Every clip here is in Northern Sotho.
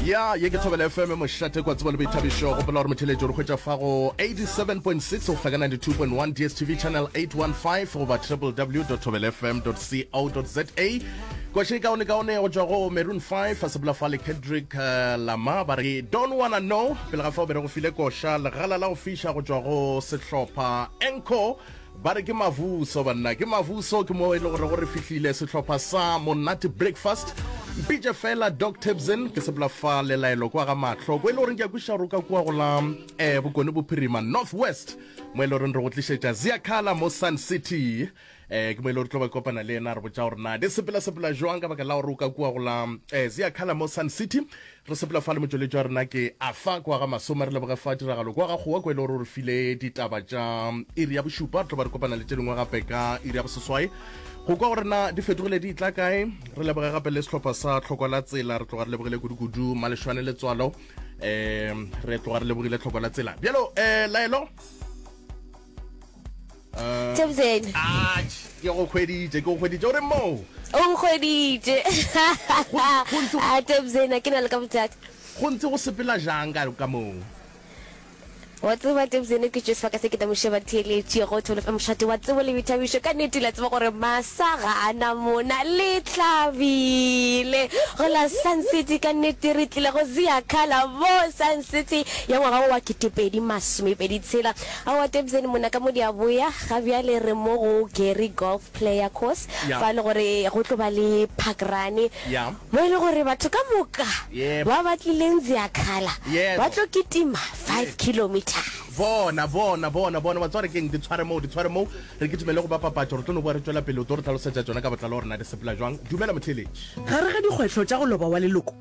ya ye ke thobela fm mošate kwa tsebo le boithabišo gopola gore motheletši o re hwetša fa go 87.6 go hlaka 92.1 dstv channel 815 goba www thobela fm co za kwešeng kaone kaone go tšwa go maroon 5 a sebola fa le kendrick uh, lama ba re don't wanna know pele ga fa o bere go file koša legala la go fiša go tšwa go sehlopha enco Ba re ke mavuso banna ke mavuso ke mo e le gore go re fihlile sehlopha sa monate breakfast mpitše fela doc tabson ke sepela fa lelaelo kwa ga mahlo ko e le goreng ke ya kwiša roka kua go la um eh, bokone bophirima north west mo e le goreng re go tlišetša ziakala mo sun city um ke mo e le gore tlo ba kopana le yena re botsa gore na di sepela sepela jwang ka baka la gore o ka kua go la um eh, ziakala mo sun city Re sepela fa le motšweletši wa rena ke Afa kwa ga Masome. Re leboge fa tiragalo kwa ga kgowa kwa e le gore o re file ditaba tša iri ya bošupa. Re tlo ba re kopana le tše dingwe gape ka iri ya boseswai go kwa gore na di fetogile di tla kae. Re leboge gape le sehlopha sa tlhoko la tsela re tloga re lebogile kudu-kudu malešwane letswalo um re tloga re lebogile tlhoko la tsela bjalo um laelo Thabiseng. Ah, ke go hweditše, ke go hweditše. O re moo? O nkgweditše. Ah, Thabiseng, a ke na le ka bothata. Go ntse go sepela jang ka ka moo? Wa tseba Thabiseng ke tšwe sebaka se ke tla mo sheba theeletše go thole fa mošate wa tsebo le boithabišo ka nete la tseba gore masa ga a na mona le tlhabile go la sun city ka nete re tlile go zea khala mo sun city ya ngwaga wa ketepedi masomepedi tshela Aowa Tebzeni monna ka mo di a boya, ga bjale re mo go Gary Golf Player Course Yeah. fa e le gore go tlo ba le park run Yeah. mo e le gore batho ka moka Yep. ba ba tlileng Ziakhala Yebo. ba tlo kitima 5 kilometres. bona bona bona bona wa tsware keng di tshware moo di tshware moo re ke tumele go ba papatso re tlo no boa re tswela pele o tlo re tlhalosetsa tsona ka botlalo gore na di sepela jwang dumela motheletši Gare ga dikgwetlho tša go loba wa leloko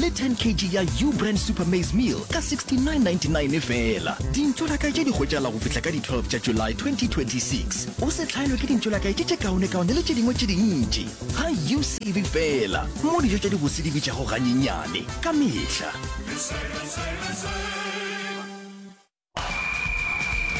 le 10 kg ya u brand super maize meal ka 69.99 e fela dintšo la kae tše di hwetšala go fihla ka di-12 tša july 2026 o se hlaelwe ke dintšo la kae tše tše kaonekaone le tše dingwe tše dintši ga u save fela mo dijo tša dibose di bitšago ganyenyane ka mehla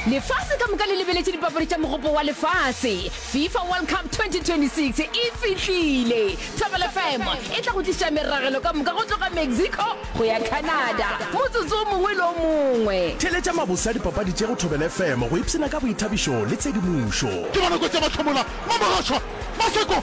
Lefase ka moka le lebeletše dipapadi tša mogopo wa lefase FIFA World Cup 2026 e fihlile. Thobela FM e tla go tliša meragelo ka moka go tloga Mexico go ya Canada motsotso o mongwe le o mongwe. Theeletša mabose a dipapadi tše go Thobela FM go ipshina ka boithabišo le tshedimošo. Ke bona kotsi ya mahlomola, Mamorotshwa, Maseko.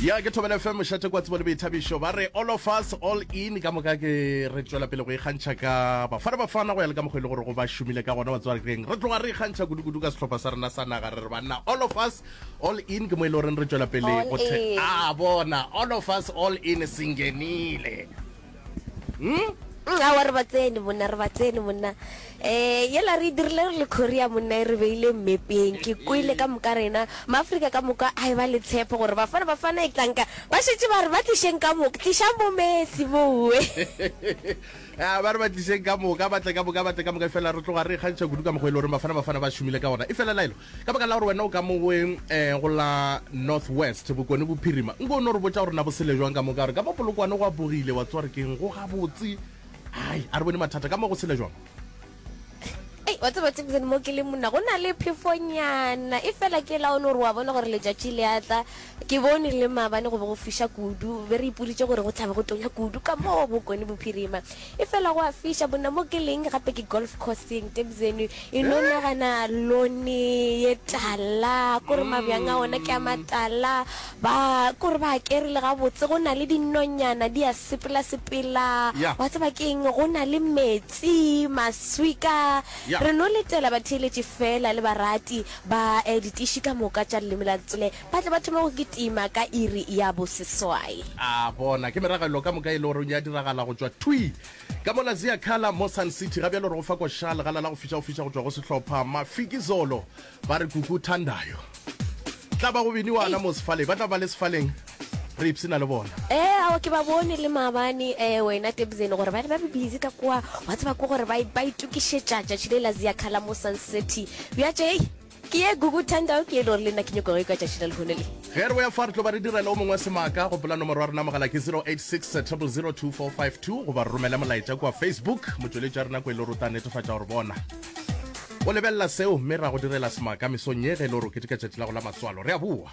Ya ke Thobela FM mošate kwa tsebo le boithabišo ba re all of us all in ka moka ke re tšwela pele go ikgantšha ka bafana bafana go ya le ka mokgwa e le gore go ba šomile ka gona batswarekreng re tloga re ikgantšha kudu-kudu ka sehlopha sa rena sa naga re re banna all of us all in ke mo e le goreng re tšwela pele All go the- in. a bona all of us all in sengenile hmm? Mm, awa re ba tsene monna re ba tsene monna um yela re dirile re le korea monna e re beile mmepeng ke kwele ka moka rena maaforika ka moka a e ba le tshepo gore bafana bafana e tlanka ba šetse ba re ba tlišeng ka moka tlišang bo messi bowe ah, ba re ba tlišeng ka moka batle ka moka batle ka moka e fela re tloga re kgantšha kudu ka mokgwa e le gore bafana bafana ba šomile ka gona e fela laelo Ka baka la gore wena o ka mo goe um go la North West, Bokone Bophirima, nko o no re botša gore na bo sele jwang ka moka, gore ka mo Polokwane go apogile, wa tseba gore ke'ng, go gabotse, hai, a re bone mathata, ka mo go sele jwang. Ei, wa tseba Thibson, mo ke leng monna, go na le phefonyana, efela ke la o no re wa bona gore letšatši le a tla, Ke bone le maabane go be go fiša kudu. Be re ipoditše gore go tla be go tonya kudu ka mo bokone bophirima. Efela go a fiša, bona mo ke leng, gape ke golf course-eng. Tebzeni e no nagana lone ye tala, kore mabjang a ona ke a matala, ba, kore ba a kerile gabotse, go na le dinonyana di a sepela-sepela. Yeah. Wa tseba ke eng, go na le metsi, maswika. Yeah. Re no letela batheeletši feela le barati. Ba e ditiši ka moka tša leleme la Tsile ba tle ba thome go kitima ka iri ya boseswai. A bona, ke meragalelo ka moka e le goreng ya diragala go tšwa thwi ka mo la Ziakala mo Sun City. Ga bjalo re go fa koša legala la go fiša go fiša go tšwa go sehlopha Mafikizolo ba re Kuku Thandayo. Tla ba go biniwana mo sefaleng, ba tla ba le sefaleng. re ipsena le bona ee eh, ao ke ba bone le maabane um eh, wena tebzene gore ba ne ba be busy ka kwa wa tseba ko gore ba itokišetša tšatši le la zia khala mo sun city bjatše ei ke ye google tandao ke e le gore le nna ke nyoko go e kwa tšatši la lehone le ge re boya fa re tlo ba re direla o mongwe wa semaka go pola nomoro ya rena mogala ke 086 002452 goba re romele molaetša kua facebook motšweletši ya rena ko e le rota netefatša gore bona o lebelela seo mme ra go direla semaka mesong ye ge e le gore o keteka tšatši la go la matswalo re a boa